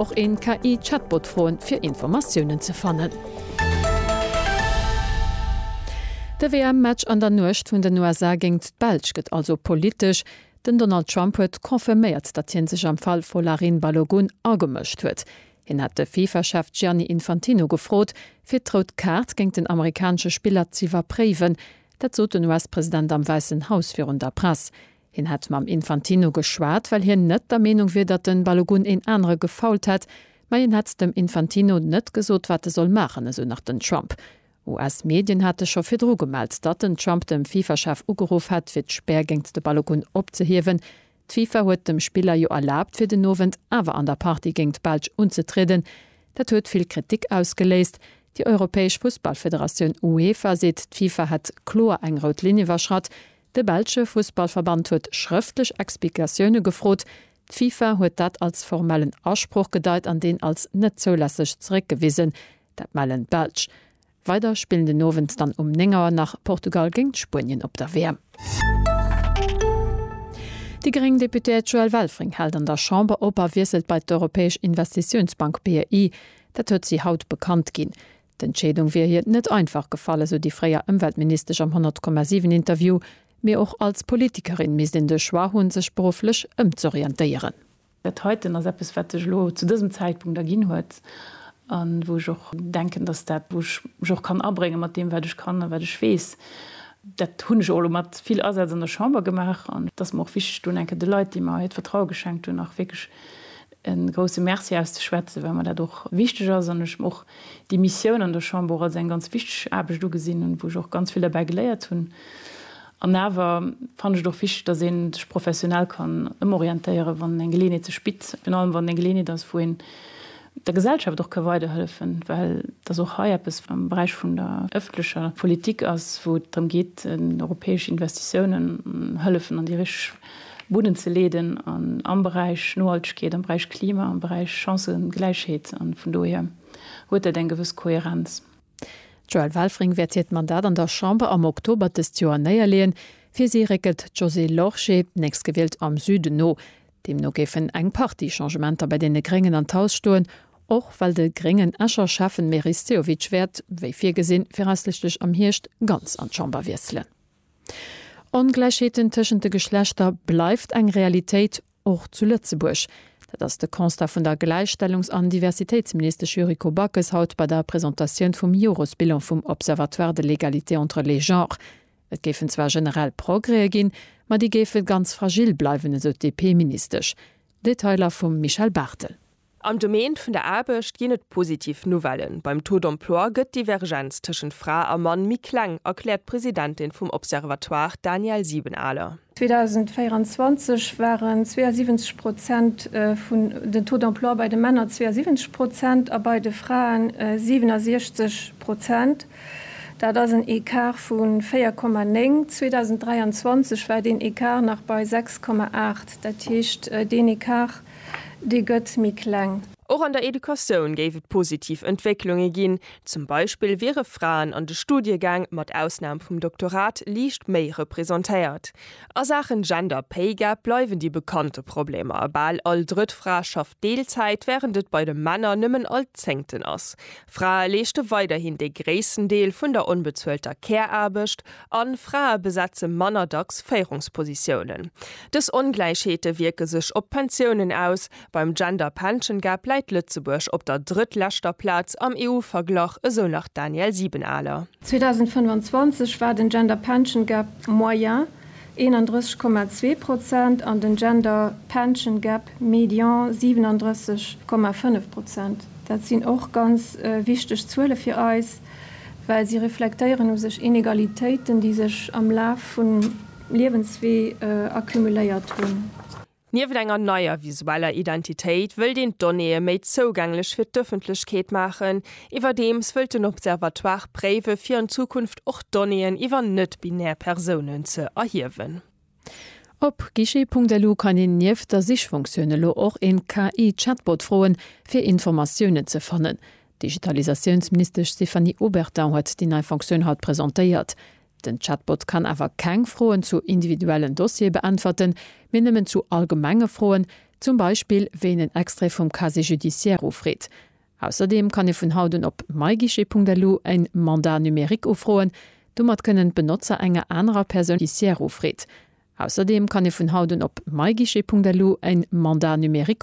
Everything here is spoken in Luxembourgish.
Och een KI Chatbot froen fir Informatiounen ze fannen. De WM Match an der Nuecht vun den USA géingt d'Belsch gëtt also politesch. Den Donald Trump huet confirméiert, datt hien sech am Fall Folarin Balogun agemëscht huet. Hien hat de Fifa Chef Gianni Infantino gefrot fir d'Rout Kaart géingt den amerikanesche Spiller z'iwwerpréiwen. Dat sot den US President am Wäissen Haus virun der Press. Hien hätt mam Infantino geschwat, well hien net der Meenung wier, datt de Balogun een anere gefoult hätt. Mä hien hätt dem Infantino net gesot, wat e soll maachen, esou nach den Trump. US-Medien hate scho virdru gemellt, datt den Trump dem FIFA-Chef ugeruff hätt, fir d'Spär géingt de Balogun opzehiewen. D'FIFA huet dem Spiller jo erlaabt, fir den Owend awer an der Partie géingt d'Belsch unzetrieden. Dat huet vill Kritik ausgeléist. Déi europäesch Fussballfederatioun UEFA seet, d'FIFA hätt kloer eng rout Linn iwwerschratt. De belsche Fussballverband huet schrëftlech Explikatioune gefrot. D'FIFA huet dat als formellen Asproch gedeit an deen als net zoulässeg zeréckgewisen. Dat mellen d'Belsch. Weider spillen den Owend dann um 9 Auer nach Portugal géint Spuenien op der WM. Déi gréng Deputéiert Joëlle Welfring hält an der Chamber op a wiesselt bei d'Europäesch Investitiounsbank, BEI. Dat huet si haut bekannt ginn. D'Entscheedung wier hir net einfach gefall, esou déi fréier Ëmweltministesch am 100,7 Interview. Mee och als Politikerin misst een de Choix hunn, sech berufflech ëmzorientéieren. Dat heiten ass eppes, wat sech elo zu dësem Zäitpunkt erginn huet a wou ech och denken, datt dat, wou ech mech och kann abréngen, mat deem wat ech kann a wat ech weess, dat hunn ech och elo mat vill Asaz an der Chamber gemaach, an et ass mer och wichteg, do eng Kéier de Leit, déi mer hiert Vertraue geschenkt hunn, och wierklech e grousse Merci auszeschwätzen, well mer dat och wichteg ass an ech och déi Missioun an der Chamber als eng ganz wichteg Aarbecht ugesinn hunn, wou ech och ganz vill derbäi geléiert hunn. An awer fannen ech et och wichteg, dass ee sech professionell kann ëmorientéieren, wann eng Geleeënheet sech bitt, virun allem wann et eng Geleeënheet ass, wou een der Gesellschaft och ka weiderhëllefen, well et ass och hei eppes am Beräich vun der ëffentlecher Politik ass, wou et drëm geet, europäesch Investitiounen, Hëllefen an déi richteg. Bunnen ze leeden an am Beräich Nohaltegkeet, am Beräich Klima, am Beräich Chancëgläichheet an vun dohier huet dat eng gewëss Kohärenz. D'Joëlle Welfring wäert hiert Mandat an der Chamber am Oktober dëst Joer néierleeën. Fir si réckelt d'Josée Lorsché, nächstgewielt am Süden, no. Deemno géifen eng Partie Changementer bei deene Gréngen an d'Haus stoen, och well de gréngen Escher Schäffen Meris Sehovic wäert, wéi virgesinn, viraussiichtlech am Hierscht ganz an d'Chamber wiesselen. Ongläichheeten tëschent de Geschlechter bleift eng Realitéit, och zu Lëtzebuerg. Dat ass de Constat vun der Gläichstellungs an Diversitéitsministesch Yuriko Backes haut bei der Presentatioun vum Jores-Bilan vum Observatoire de l'égalité entre les genres. Et géifen zwar generell Progrèe ginn, ma déi géife ganz fragil bleiwen, esou d'DP-Ministesch. Detailer vum Michel Barthel. Am Domaine vun der Aarbecht ginn et positiv Nouvellen, Beim Taux d'emploi gëtt d'Divergenz tëschent Fra a Mann méi kleng, erkläert d'Presidentin vum Observatoire, d'Danièle Siebenaler. 2024 waren 72 Prozent vun den Taux d'emploi bei de Männer 72 Prozent a bei de Fraen 67 Prozent. Dat ass en Ecart vu 4,9. 2023 war deen Ecart nach bei 6,8. Dat heescht, deen Ecart Déi gëtt méi kleng. Och an der Educatioun géif et positiv Entwécklunge ginn. Zum Beispill wiere Fraen an de Studiegäng, mat Ausnam vum Doktorat, liicht méi representéiert. A Saachen Gender Pay Gap bleiwen déi bekannte Problemer. Bal all drëtt Fra schafft Deelzäit, wärend et bei de Männer nëmmen all zéngten ass. Frae leeschte weiderhin de gréissten Deel vun der onbezuelter Care-Aarbecht a Frae besetze manner dacks Féierungspositiounen. Dës Ongläichheete wierke sech op d'Pensiounen aus, beim Gender Pension Gap läit Lëtzebuerg op der drëttleschter Plaz am EU-Verglach, esou nach d'Danièle Siebenaler. 2025 war den Gender Pension Gap Moyen 31,2 Prozent an den Gender Pension Gap Median 37,5 Prozent. Dat sinn och ganz wichteg Zuele fir eis, well si reflektéieren u sech Inegalitéiten, déi sech am Laf vum Liewenswee accumuléiert hunn. Nieft enger neier visueller Identitéit wëllt een d'Donnéeë méi zougänglech fir d'Ëffentlechkeet maachen. Iwwerdeems wëllt den Observatoire préiwe fir an Zukunft och Donnéeën iwwer net-binär Persounen ze erhiewen. Op guichet.lu kann een nieft der Sichfunktioun elo och een KI-Chatbot froen, fir Informatiounen ze fannen. D'Digitalisatiounsministesch Stéphanie Obertin huet déi nei Funktioun haut presentéiert. Den Chatbot kann awer keng Froen zu individuellen Dossiere beäntwerten, mee nëmmen zu allgemenge Froen, zum Beispill wéien en Extrait vum Casier judiciaire ufreet. Ausserdeem kann ee vun haut un op myguichet.lu en Mandat numérique ufroen. Domat kënnen d'Benotzer enger anerer Persoun déi d'Casier judiciaire ufreet. Ausserdeem kann ee vun haut un op myguichet.lu en Mandat numérique ufroen.